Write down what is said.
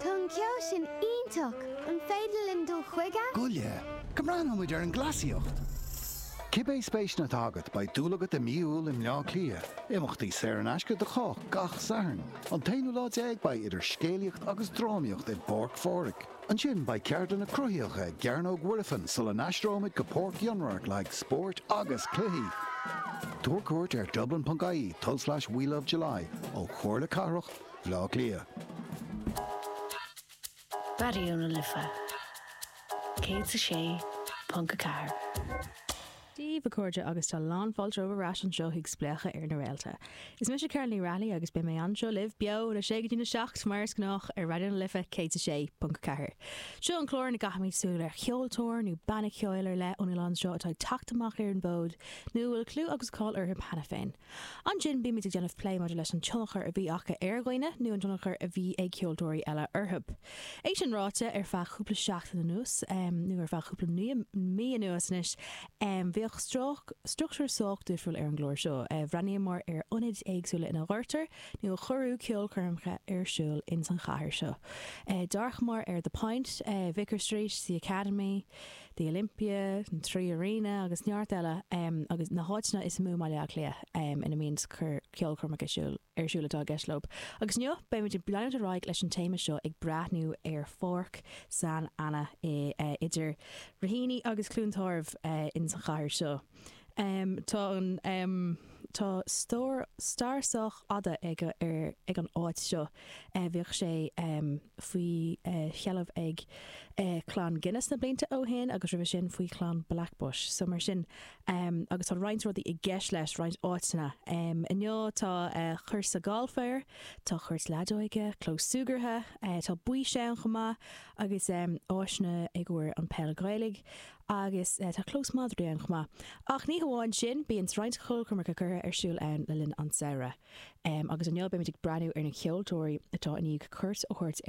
Tá an ceol sin iontach! An féidir linn dul chuige? Go le. Go mbreathnóidh muid ar an gcleasaíocht! Cibé spéiseanna atá agat, beidh dúil agat i Mí Iúil i mBleá Cliath. Imeachtaí saor in aisce do chách gach Satharn. An t-aonú lá déag beidh idir scéalaíocht agus drámaíocht i bPáirc Phádraig. Ansin beidh ceardlanna cruthaitheacha i gCearnóg Mhuirfean sula n-aistreoimid go Páirc Fhionnradhairc le haghaidh spóirt agus cluichí. Tabhair cuairt ar dublin.ie tulslais we love july ó Chomhairle Cathrach Bleá Cliath. Raidió na Life 106.4. Dia daoibh, a chairde, agus tá lán fáilte romhaibh ar ais anseo chuig Spléachadh ar na Réalta. Is mise Carolyn Ní Raghallaigh agus beidh mé anseo libh, beo, óna 6 go dtí na 7, mar is gnách, ar Raidió na Life 106.4. Seo an clár ina gcaithimid súil ar cheoltóir nó banna ceoil ar leith ón oileán seo atá ag teacht amach ar an bhfód nó a bhfuil clú agus cáil orthu cheana féin. Ansin bímid ag déanamh plé maidir leis an tionchar a bhí acu ar dhaoine nó an tionchar a bhí ag ceoltóirí eile orthu. É sin ráite, ar feadh cúpla seachtain anuas, nó ar feadh cúpla mí anuas anois, bhíodh struchtúr sách difriúil ar an gclár seo. Bhreathnaíomar ar ionaid éagsúla ina gcuirtear, nó a cuireadh, ceolchoirmeacha ar siúl ins an chathair seo. D'amharcamar ar The Point, Vicar Street, The Academy, The Olympia, an Three Arena agus neart eile agus na háiteanna is mó i mBaile Átha Cliath ina mbíonns ceolchoirmeacha ar siúl atá i gceist leo. Agus inniu beimid ag leanúint ar aghaidh leis an téama seo ag breathnú ar Pháirc San Anna idir Raheny agus Cluain Tarbh ins an chathair seo. Tá an, tá stair sách fada ag an áit seo. Bhíodh sé faoi sheilbh ag clann Guinness na blianta ó shin agus roimhe sin faoi chlann Blackbush. So mar sin, agus tá roinnt rudaí i gceist leis, roinnt áiteanna. Inniu tá cúrsa gailf air, tá cúirt leadóige, clós súgartha, tá baois ann chomh maith agus áiseanna i gcomhair an pheil Ghaelach Agus tá clós madraí ann chomh maith. Ach ní hamháin sin, bíonn roinnt ceolchoirmeacha curtha ar siúl ann le linn an tsamhraidh. Agus inniu beimid ag breathnú ar na ceoltóirí atá i ndiaidh cuairt a thabhairt ar